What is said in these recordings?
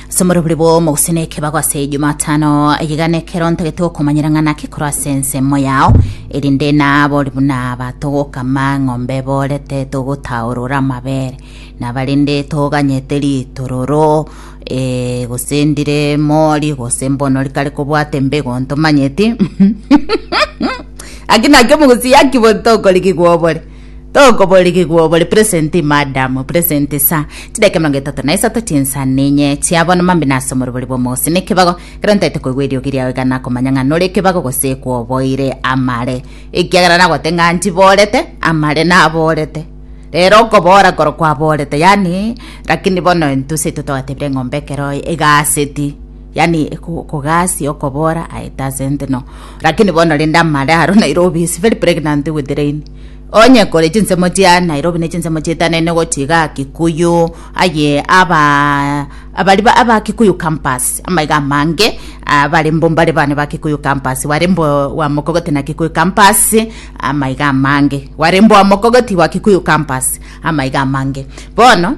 somoro buri bwo mogusene ekebago ase jumatano egigana ekero ntagete gokomanyera ng'ana kekoro ase ensemo yao erinde nabo buna batogokama ng'ombe borete togotaorora amabere nabarinde toganyete ritororo eh, gose ndire mori gose mbono rikare kobwate mbego ntomanyeti aki nakio mogosi yaki botokorigigwa obore Tokoborigigwa obore present madam present sa chidakika emerongo etato na isato chinsa ninye chia bono mambi nase omorobori bw'omosi ne ekebago kero ntaete koigwa eriogi riao iga nakomanya ng'a nore ekebago gose kwoboire amare ekiagera nagote ng'a ntiborete amare naborete rero okobora koro kwaborete yani lakini bono intwe seito twagatebire eng'ombe ekero egaseti Yaani kogasi okobora I doesn't know. Lakini bono rende amare aro Nairobi is very pregnant with rain. Onye kore chinsemo chia Nairobi ne chinsemo chietanene gochi iga Kikuyu aye aba abari ba aba Kikuyu campus amaiga amange abare mbo mbare bane ba Kikuyu campus ware mbo wa Mokogoti na Kikuyu campus amaiga amange ware mbo wa Mokogoti wa Kikuyu campus amaiga amange bono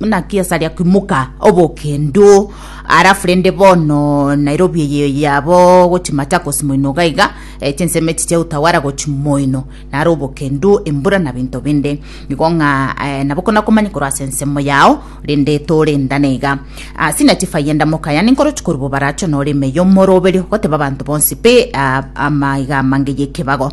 naki esaria kimuka obokendo arafu rende bono nairobi eye yabo gochi machakos moino gaiga eh, chinseme chiche utawara gochi moino naro obokendo embura na binto binde nigo ng'a eh, nabo kona komanya korwa ase ensemo yao rende torendane iga Ah, sina chifayenda mokaya ninkoro chikori bobaracho nore emeyo moroberio goteba abanto bonsi pe ah, amaiga amange yekebago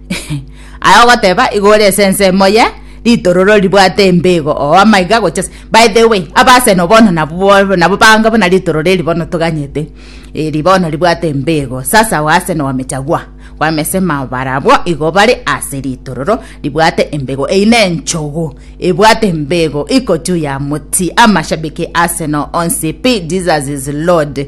Aye ogoteba igo ore ase ensemo ye ritororo ribwate embego oo amaiga gocha ase by the way abaseno bono nabo bo nabo bange buna ritororo eri bono toganyete eri bono ribwate embego sasa Arsenal wamechagua wamesema barabwo igo bare ase ritororo ribwate embego eyi na enchogu ebwate embego iko juu ya moti amashabiki Arsenal onsi pi Jesus is Lord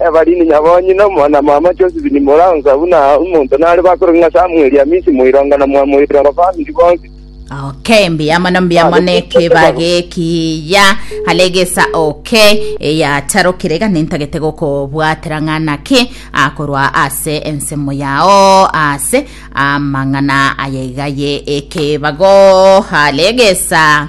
Evalini nyabonyina, omwana-mama Josefu ni moransa buna omonto nare bakoroke ng'a Samueli Hamisi Moirongo na Mwamoirongo famiri bonsi. Okay, mbuya mono mbuya Babo, mono ekero ekeba babo. gekiya hale egesa oke eyatarokire iga nintagete gokobwatera ng'a naki akorwa ase ensemo yao ase amang'ana aye iga ye ekebago hale egesa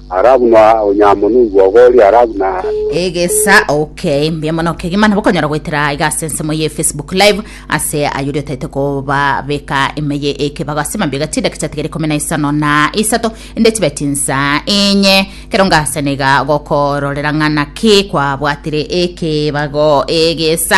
Ara buna onyamonwe igwogo oria ara buna. Egesa okay mbuya mono kegima nabo konyora goetera aiga ase ensemo ye Facebook live ase ayori otaete koba beka emeye eke bagase mambia gachi dakika tigere kumi na isano na isato ende chibeti nsa enye kero ngase nega gokororera ng'ana ki kwa bwatire eke bago egesa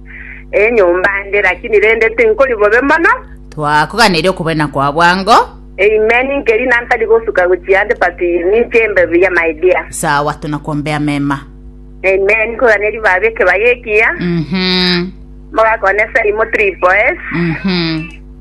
Enyomba ande, lakini rende tinkori bobe mono. Twakoganeire okobena kwa bwango. Amen nkeri na ntari gosuka gochia ande but ninche mbe buya my dear. Sawa tunakuombea mema. Amen koganeri baba ekebaya ekiya. Mhm. Mogakone Saimo Triple S. Mhm.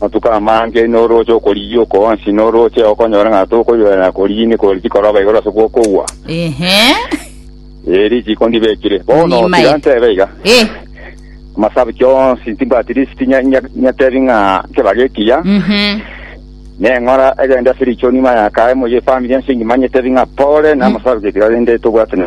Amatuko amange norooche okorigia oko onsi, norooche okonyora ng'a tokoiborera na korigia ime kore chikoroba igoro ase gw'okogwa. Ehe. Ee, risiiko ndibekire. Bono tiga Nimaete. ntebe iga. Eh. Amasabki onsi ntibwati lisiti nya- nya- nyatebi ng'a kebaga ekiya, Mhm. neng'ora egende ase richoni maya kae moyie efamiri ense engima nyetebi ng'a pole na amasabki tiga rende tobwate na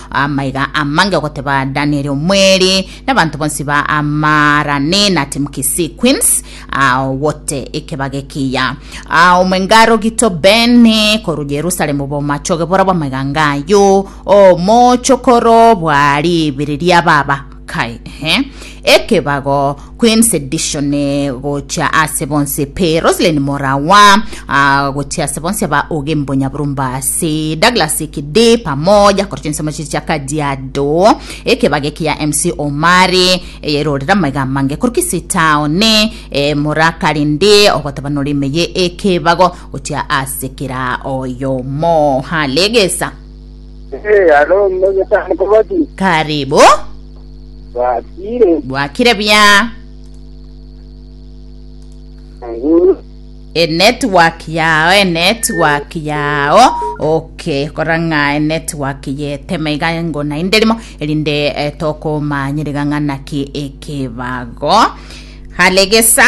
Amaiga amange ogoteba Danieli omweri, nabanto bonsi ba Amarani na Timkisi Queens, aogote ekebaga ekiya. Omwenga rogito Beni koru Yerusalemu bomachoge borabwo amaiga ngayo, omochokoro bwa ribiri ria baba. Kai, ehe. Ekebago, Queen's Edition, eh, gochia ase bonse pe Roslyn Morawa, ah, gochia ase bonse ba Ogembo Nyaburumba ase Douglas Kidi pamoja korwa chinsemo chiria chia Kajiado, ekebago eki ya MC Omari eye erorire amaiga amange korwa Kisii Town, eh, mora karinde ogoteba nore ime ye ekebago gochia ase kera oyomo. Halegesa. Eh, alo mmegesamu kobati. Karibu. Bakire. Bwakire buya. Nguru. enetwork yao enetwork yao okay korang'a enetwork yeteme iga ngo naende rimo erinde eh, tokomanyerega ng'a naki ekebago halegesa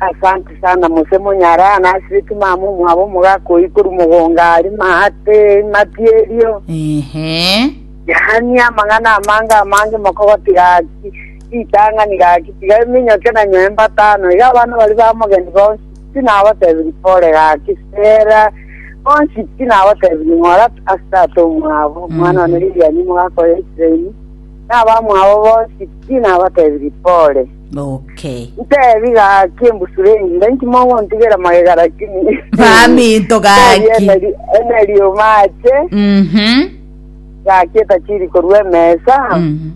Asante sana mose monyara nasireti mama omwabo omogaka oyi koru mogonga ari mahate matierio Ehe. yani amang'ana amange amange mokogote gaki ritang'ani gaki tiga eminyoke na nyoe mbatano iga abana bari bamogeni bonsi tinabatebiri pore gaki sera bonsi tinabatebiri ng'ora ase tata omwabo mwana one Lilian mogaka oyo Israeli nabamwabo bonsi tinabatebiri pore Noke. Ntebi gaki embusuro enyinga inki mogontigera magega lakini Maminto gaki. Ntebi emeri- emerioma ache Mhm. gaki etachiri korwa emesa Mhm.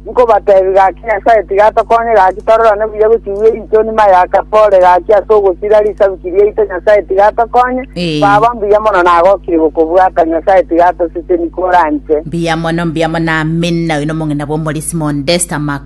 nkobatebi gaki nyasae tiga atokonye gaki tororane buya gochigua erichoni mayaka pore gaki ase ogosira risabiki riaito nyasae tiga atokonye Eh. baba mbuya mono nagokire gokobwata nyasae tiga atoseseni koranche Mbuya mono mbuya mono amina oino mong'ina bwa omorisimo Desta Mak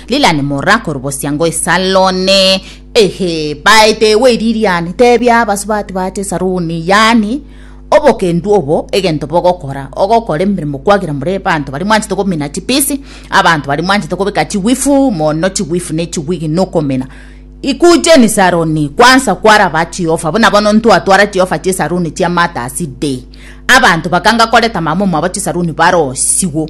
Lilian mora korobosia ngo esarone. Ehe, baete we Lilian, tebia abasubati bache esaroni, yaani obokendu obo egento bogokora ogokora emeremo kwagera more abanto bari mwanchete komina chipisi abanto bari mwanchete kobeka chiwifu mono chiwifu ne chiwigi nokomina ikujeni saroni kwansa kwaraba jehova buna bono ntwatwara jehova chisaruni chia matasi day abanto bakanga koreta mama omwabo chisaruni barosiwo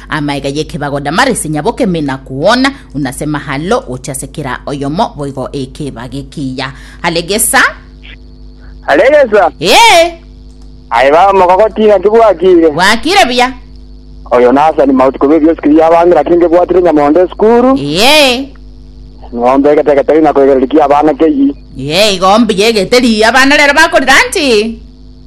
Amaega y'ekebago Damaresi nyabokeme na koona, unase mahalo gochia ase kera oyomo boigo ekebago ekiya. Aregesa. Aregesa. Ee. Aye baba mogogoti naki bwakire. Bwakire buya. Oyo nasani mauti kobe ebiosi kiria abange naki ngebwatire nyamondo esukuru. Ee. Ng'ombe egete egeteri na koegereria ki abana keyie. Ee igo mbuya egeteri abana rero bakorira nti.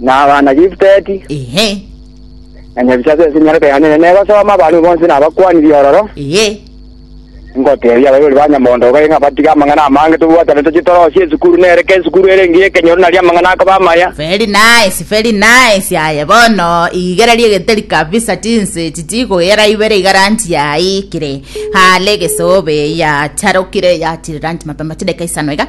na abana Gifteti, Ehe. na nyebisaku ense enyaroke yane, na negosoma abanto bonsi na abakuani bi'ororo, Ehe. ngoteebia abaibori ba Nyamondo iga ng'a batige amang'ana amange tobwatane tochie torosie esukuru, na ere k'esukuru ere engiya ekenyoro naria amang'ana akoba amaya. Very nice, very nice. Aye bono igereria egeteri kabisa chinse echi chikogera ibere iga ranchi yaikire. Hale egesobe yacharokire yachire ranchi mapema chideka isano iga.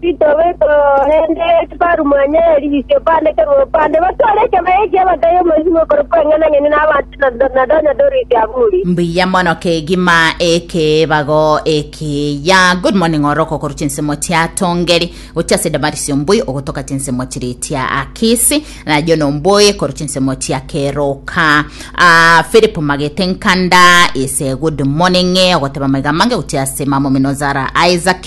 Titobeka korende Ekifaru mwanyaye erigisi okoandekerwa obopande, gose ore ekebaye eki'ebaga y'omosibwa okorokwa Eng'enang'eni n'abanto na nonya Doris Aburi. Mbuya mono kegima ekeebago ekiya. Good morning oroko korwa chinsemo chia Tongeri gochia ase Damaris omboi ogotoka chinsemo chiri chia Akisi na John omboi korwa chinsemo chia Keroka ah, Philip Magete Nkanda is a good morning ogoteba maiga amange gochia ase mamomino Zara Isaac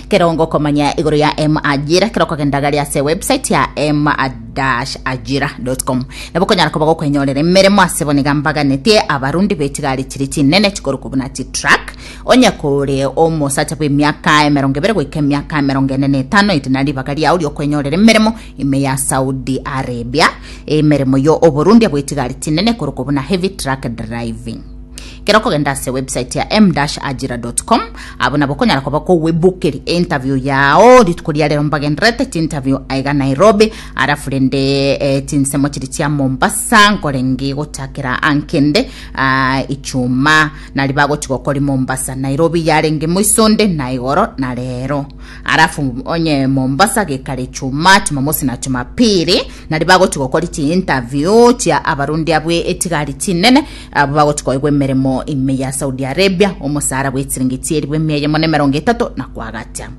Kera ongokomanya igoro ya M-Ajira, kera okogenda gari ase website ya m-ajira.com. Nabo okonyara koba gokwenyorera emeremo ase bono iga mbaganetie abarundi b'echigari chiria chinene chikorokwa buna chitruck, onye kore omosacha bw'emiaka emerongo ebere goika emiaka emerongo ene na etano, ere na ribaga riao ri'okwenyorera emeremo ime ya Saudi Arabia. Emeremo yo oborundi bw'echigari chinene ekorokwa buna heavy truck driving. Kera okogenda ase website ya m-ajira.com abo nabo okonyara koba kogwebokeri interview yao rituko ria rero mbagenderete tinterview aiga Nairobi arafu rende eh, tinsemo chiri chia Mombasa nkorengi gochakera ankende ah, ichuma nari bagochi gokori Mombasa Nairobi yarenge moisonde na igoro na rero arafu onye Mombasa gekare ichuma Jumamosi na Jumapili Nario bagochia gokori chiinterview chia abarundi abwo etigari chinene, abwo bagochia koegwa emeremo ime ya Saudi Arabia, omosara bw'echiringi chi'eribu emia eyemo na emerongo etato, na kwagacha.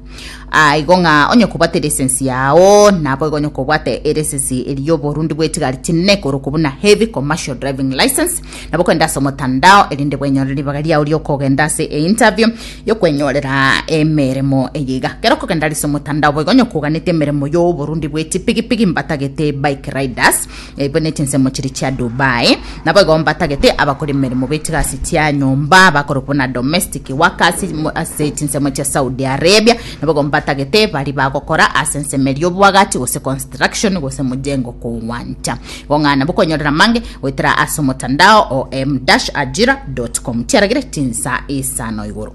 Aa igo ng'a onye kobwate eresensi yao, naboigo onye kobwate eresensi eri y'oborundi bw'etigari chinene, ekorokwa buna Heavy Commercial Driving Licence, nabo kogenda ase omotandao erinde bwenyorere ribaga riao riokogenda ase einterview yokwenyorera emeremo eye iga kero kogenda ase omotandao boigo onye koganete emeremo yoborundi bweti pigipigi mbatagete bike riders eibwe ne chinsemo chiri chia dubai naboigo mbatagete abakora emeremo betigasi tia nyomba bakorokwa na domestic workers ase chinsemo chia saudi arabia naboigo mbatagete bari bagokora ase ensemo eri obwagati gose construction gose mojengo kogwancha Bong'ana bokonyorera mange goetera ase omotandao o m-ajira.com tiaragire tinsa isano igoro.